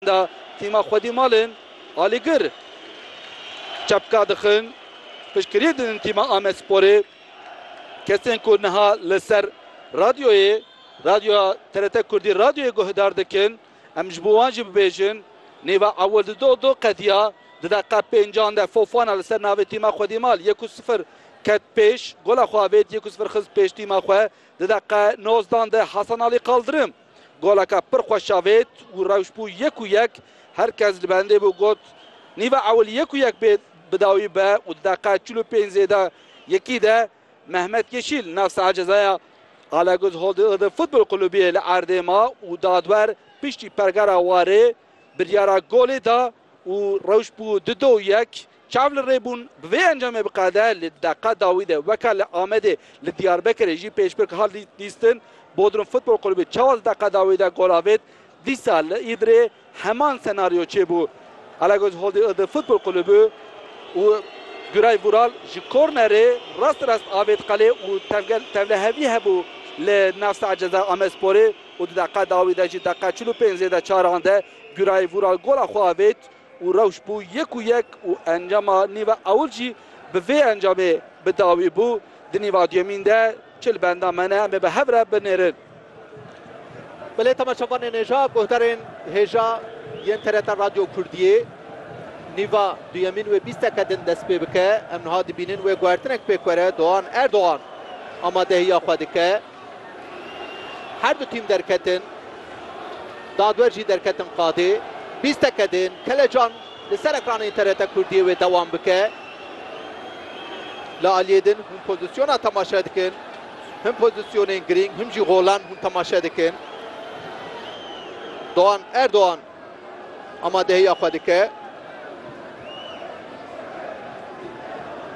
Da tîma xwedî malên Alîgir çepka dixin. Piştgiriyê didin tîma Amedsporê. Kesên ku niha li ser radyoyê, radyoya TRT Kurdî radyoyê guhdar dikin, em ji bo wan jî bibêjin. Nêva ewil di do do qediya. Di deqiqa pêncan de Fofana li ser navê tîma xwedî mal yek û sifir ket pêş. Gola xwe avêt yek û sifir xist pêş tîma xwe. Di deqiqa nozdan de Hasan Alî Kaldirim. Goleka pir xweş avêt û rewş bû yek û yek, her kes li bendê bû got, Nîva ewil yek û yek bê bi dawî be û di deqeya çil û pênc zêde yekî de Mehmet Yeşîl nav saha cezaya Alagöz Holdê Iğdır Futbol Kulübiyê li erdê ma û dadwer piştî pergera warê biryara golê da û rewş bû du do yek. Çav li rê bûn bi vê encamê biqede, li deqa dawî de weke li Amedê li Diyarbekirê jî pêşbirk hat lîstin. Bodrum Futbol Kulübü çawa di deqa dawî de gol avêt, dîsa li Îdirê heman senaryo çêbû. Alagöz Holdî Iğdır Futbol Kulübü û Güray Vural ji kornerê rast rast avêt qelê û tevlehevî hebû li nav saet ceza Amedsporê û di deqa dawî de jî deqa çil û pênc zêde çaran de Güray Vural gola xwe avêt. û rewş bû yek û yek û encama nîva ewil jî bi vê encamê bi dawî bû, di nîva duyemîn de çi li benda me ne em ê bi hev re binêrin. Bi lê temaşevanên hêja guhdarên hêja yên TRT Radyo Kurdiyê nîva duyemîn wê bîsteke din dest pê bike. Em niha dibînin wê guhertinek pêk were Doğan Erdogan amadehiya xwe dike. Her du tîm derketin. Dadwer jî derketin qadê. Bîst deke din. Kelecan li ser ekranên TRT Kurdiyê wê dewam bike. Li aliyê din hûn pozîsyona temaşe dikin. Him pozîsyonên girîng him jî golan hûn temaşe dikin. Doğan Erdoğan. Amadehiya xwe dike.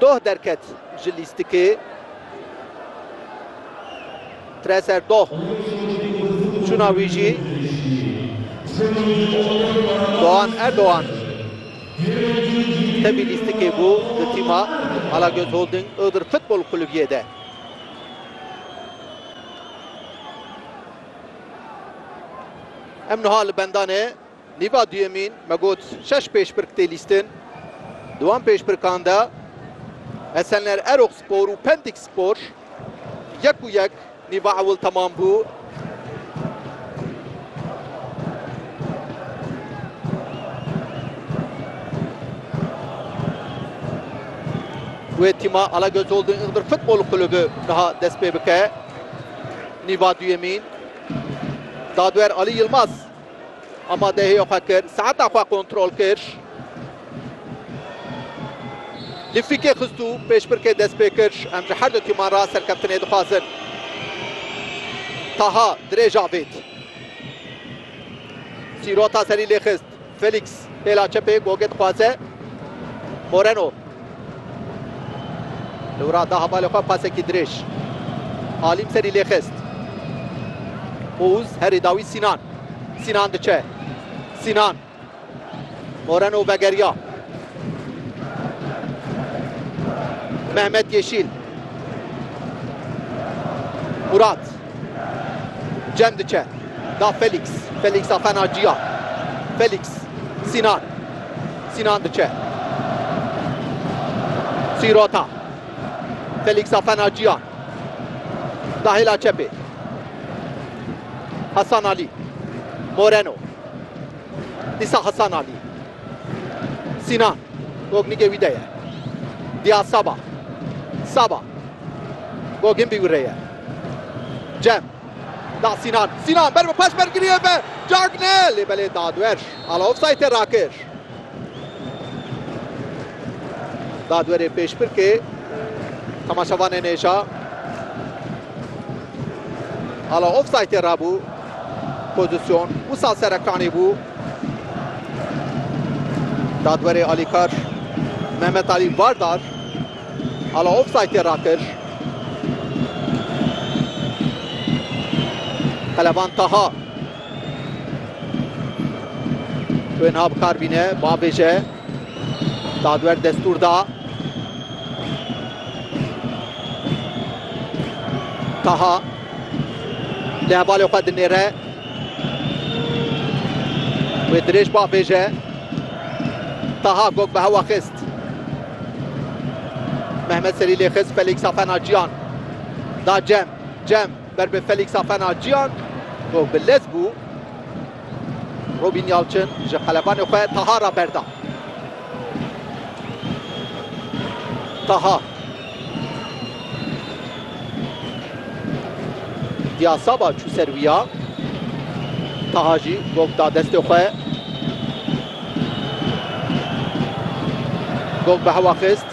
Doh derket ji lîstikê. Treser Doh çûna wî jî Doğan Erdoğan tevî lîstikê bû di tîma Alagöz Holding Iğdır Futbol Kulübiyê de. Em niha li bendanê nîva duyemîn me got şeş pêşbirk tê lîstin. Di wan pêşbirkan de Esenler Erok Spor û Pendik Spor yek û yek nîva ewil temam bû. Wê tîma Alagöz Holding Iğdır Futbol Kulübü niha dest pê bike. Nîva duyemîn, dadwer Alî Yilmaz amadehiyê xwe kir, saeta xwe kontrol kir. Li fîkê xistû pêşbirkê dest pê kir. Em ji her du tîman re serkeftinê dixwazin. Taha dirêj avêt. Sîrota serî lê xist. Felix pêla çepê gogê dixwaze. Moreno li wira da hevalê xwe pasekî dirêj. Alim serî lê xist. Ouz herî dawî Sînan. Sînan diçe. Sînan. Moreno vegeriya. Mehmet Yeşîl. Murat. Cem diçe da Felîks. Felîks da fena Ciya. Felîks, Sînan. Sînan diçe. Sîrota. Felîks da fena Ciya. Da hêla çepê. Hasan Alî. Moreno. Dîsa Hasan Alî. Sînan, Gognikê wî de ye. Diyar Saba, Saba, Gogin bî wî rê ye. Cem, da Sînan, Sînan ber bi paş ber giriye be Cagne lê belê dadwer ala ofsaytê rakir. Dadwerê pêşbirkê temaşevanê nêşa ala ofsaytê rabû pozîsyon wisa serekanî bû. Dadwerê alîkar Mehmet Alî Vardar ala ofsaytê rakir. Pelevan Taha Tu ên ha bikar bîne, bavêje. Dadwer destûr da. Taha Lê hevalê xwe dinêre. Wê dirêj bavêje. Taha gog bi hewa xist. Mehmet serî lê xist Felîksa fena ciyan. Da cem. Cem ber bi Felîksa fena ciyan. Gog bi lez bû. Robîn Yalçin ji qelebanê xwe Taha re berda. Taha. Diya Saba çû ser wî ya. Taha jî gog da destê xwe. Gog bi hewa xist.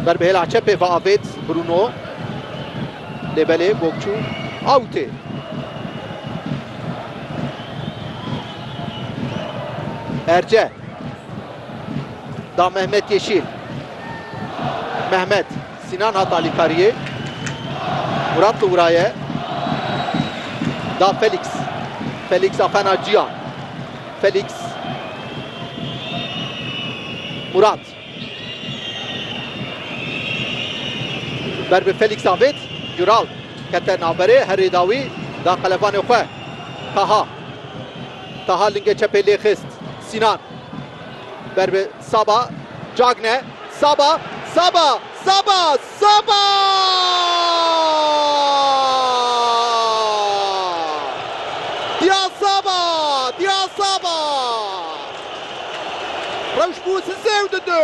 Ber bi hêla çepê ve avêt Bruno. Lê belê Gokçu out ê. Erce da Mehmet Yeşîl. Mehmet Sinan hat alîkariyê. Murat li wiraye. Da Felix. Felix Afena Ciyan. Felix Murat. Ber bi Felîx David, Dural kete navberê herê da wî, da qelebanê xwe Taha. Taha lingê çepê lê xist, Sînan ber bi Saba, Cagne, Saba, Saba, Saba, Saba! Diya Saba! Diya Saba! Rewş bû si sê û di du.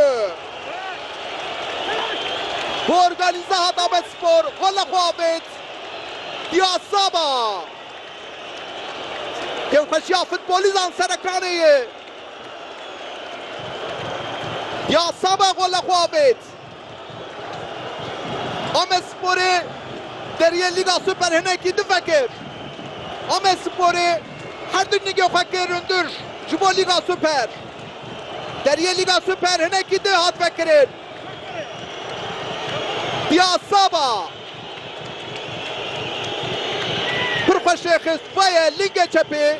Bi organîze hat Amedspor xwe li xwe avêt. Diya Saba! Kêfxweşiya futbolîzan serekanê ye. Diya Saba xwe li xwe avêt. Amedsporê deriyê Lîga Super hinekî din vekir. Amedsporê her du nigê xwe kir hundir ji bo Lîga Super. Deriyê Lîga Super hinekî din hat vekirin. Diya Saba pir xweş rê xist, vaye lingê çepê.